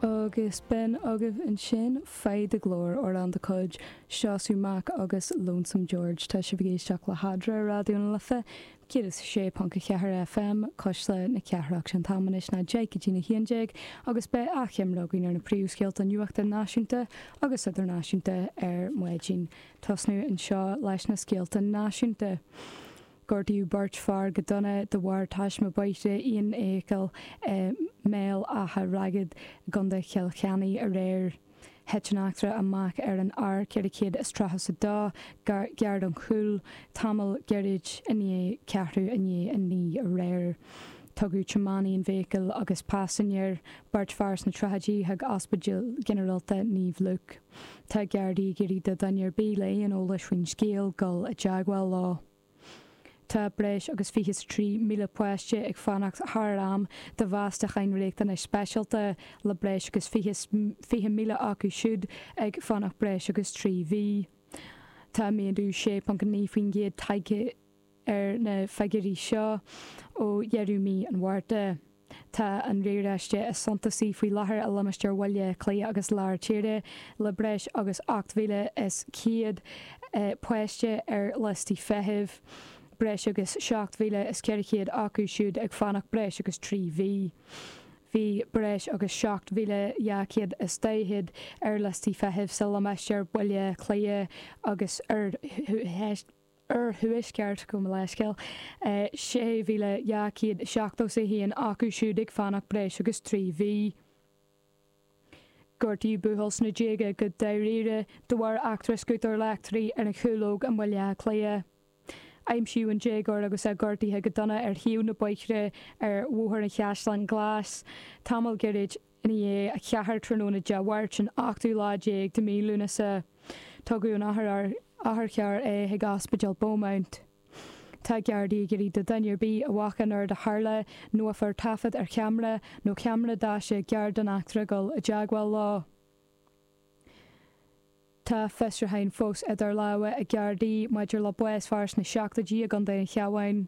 Agus bhí agaibh ansin, faigh do ghlór, amhrán de chuid Síomha Brock agus Lonesome George. Tá sibh ag éisteacht le hAdhmhaidin, Raidió na Life, 106.4 FM, Cois Life na Cathrach. Sé an t-am anois ná deich go dtí na haon déag agus beidh achoimre againn ar na príomh scéalta nuachta náisiúnta agus idirnáisiúnta ar maidin. Tosnú anseo leis na scéalta náisiúnta. Gortaíodh beirt fear go dona de bharr taisme bóthair aon fheithicil i mBéal Átha Ragad i gContae Chill Chainnigh aréir. Thit an eachtra amach ar an R432 gar don Chúil tamall gairid i ndiaidh ceathrú i ndiaidh a naoi aréir. Tugadh tiománaí na feithicle agus paisinéir, beirt fear sna tríochaidí chuig Ospidéal Ginearálta Naomh Luke. Tá Gardaí ag iarraidh ar dhuine ar bith le aon eolas faoin scéal dul i dteagmháil leo. Tá breis agus 23,000 páiste ag fanacht thar am do mheastacháin riachtanas speisialta le breis agus 20,000 acu siúd ag fanacht breis agus trí mhí. Tá méadú 6.9% tagtha Ar na figiúirí seo ó dheireadh mhí an Mhárta, tá an riaráiste is suntasaí faoi láthair i limistéar Bhaile Átha Cliath agus Lár Tíre le breis agus 8,100 páiste ar liostaí feithimh, breis agus 7,400 acu siúd ag fanacht breis agus trí mhí. Bhí breis agus 7,240 ar liostaí feithimh sa limistéar Baile Átha Cliath agus Oirthear. Oirthuaisceart, gabh mo leithscéal, 6,271 acu siúd ag fanacht breis agus trí mhí. Gortaíodh buachaill sna déaga go dáiríre de bharr eachtra scútair leictrí ar an gCúlóg i mBaile Átha Cliath. Aimsíodh an déagóir agus é gortaithe go dona ar thaobh an bhóthair ar Bhóthar an Chaisleáin Ghlais tamall gairid i ndiaidh a ceathair tráthnóna Dé Máirt an 8ú lá déag de mhí Lúnasa tugadh in otharcharr é chuig Ospidéal Beaumont. Tá Gardaí ag iarraidh ar dhuine ar bith a bhfaca an rud a tharla nó a fuair taifead ar cheamra nó ceamara daise cairr den eachtra dul i dteagmháil leo. Tá fiosrúcháin fós idir lámha ag Gardaí maidir le bás fir sna seachtóidí i gContae an Chabháin.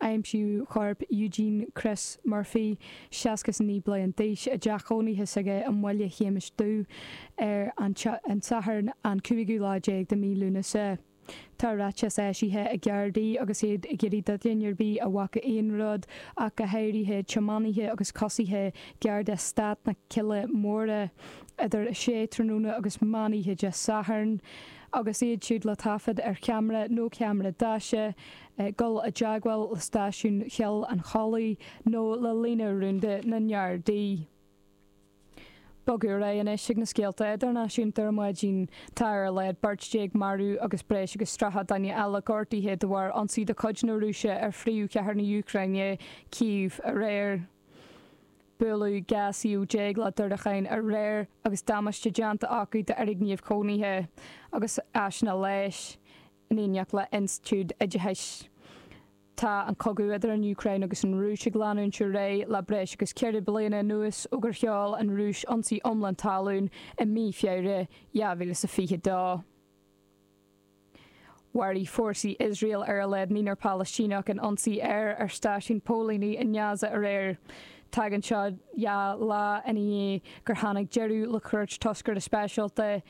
Aimsíodh corp Eugene Chris Murphy, 69 bliain d'aois, i dteach chónaithe s'aige i mBaile Shéamais Dhuibh ar an Satharn an cúigiú lá déag de mhí Lúnasa. Tá ráiteas eisithe ag Gardaí agus iad ag iarraidh duine ar bith a bhfaca aon rud ach go háirithe tiománaithe agus coisithe gar d'Eastát na Cille Móire idir 6 tráthnóna agus meán oíche Dé Sathairn agus iad siúd le taifead ar cheamara nó ceamara daise dul i dteagmháil le stáisiún Choill an Chollaigh nó le líne rúnda na nGardaí. Bogfaidh ar aghaidh anois ag na scéalta idirnáisiúnta ar maidin. Tá ar a laghad beirt déag maraithe agus breis agus tríocha duine eile gortaithe de bharr ionsaí de chuid na Rúise ar phríomhchathair na Úcráine, Cív, aréir. Buaileadh 12 suíomh le diúracáin aréir agus damáiste déanta acu d'fhoirgnimh chónaithe agus áiseanna leighis, in éineacht le institiúid oideachais. Tá an cogadh idir an Úcráin agus an Rúis ag leanúint ar aghaidh le breis agus ceithre bliana anuas ó gur sheol an Rúis ionsaí iomlán talún i mí Feabhra 2022. Mharaigh fórsaí Iosrael ar a laghad naonúr Palaistíneach in ionsaí aeir ar stáisiún póilíní i nGaza aréir. Tagann seo dhá lá ina dhiaidh gur tháinig deireadh le cuairt toscaire speisialta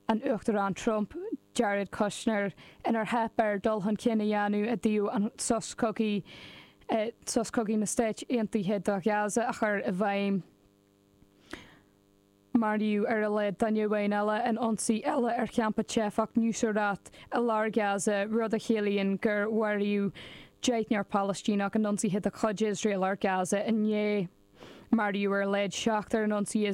an Uachtaráin Trump, Jared Kushner, inar theip air dul chun cinn a dhéanamh i dtaobh sos cogaidh na Stáit Aontaithe do Ghaza, a chur i bhfeidhm. Maraíodh ar a laghad duine amháin eile in ionsaí eile ar champa teifeach Nuseirat i lár Ghaza, rud a chiallaíonn gur mharaíodh deichniúr Palaistíneach in ionsaithe de chuid Iosrael ar Ghaza inné. Maraíodh ar a laghad seachtar in ionsaí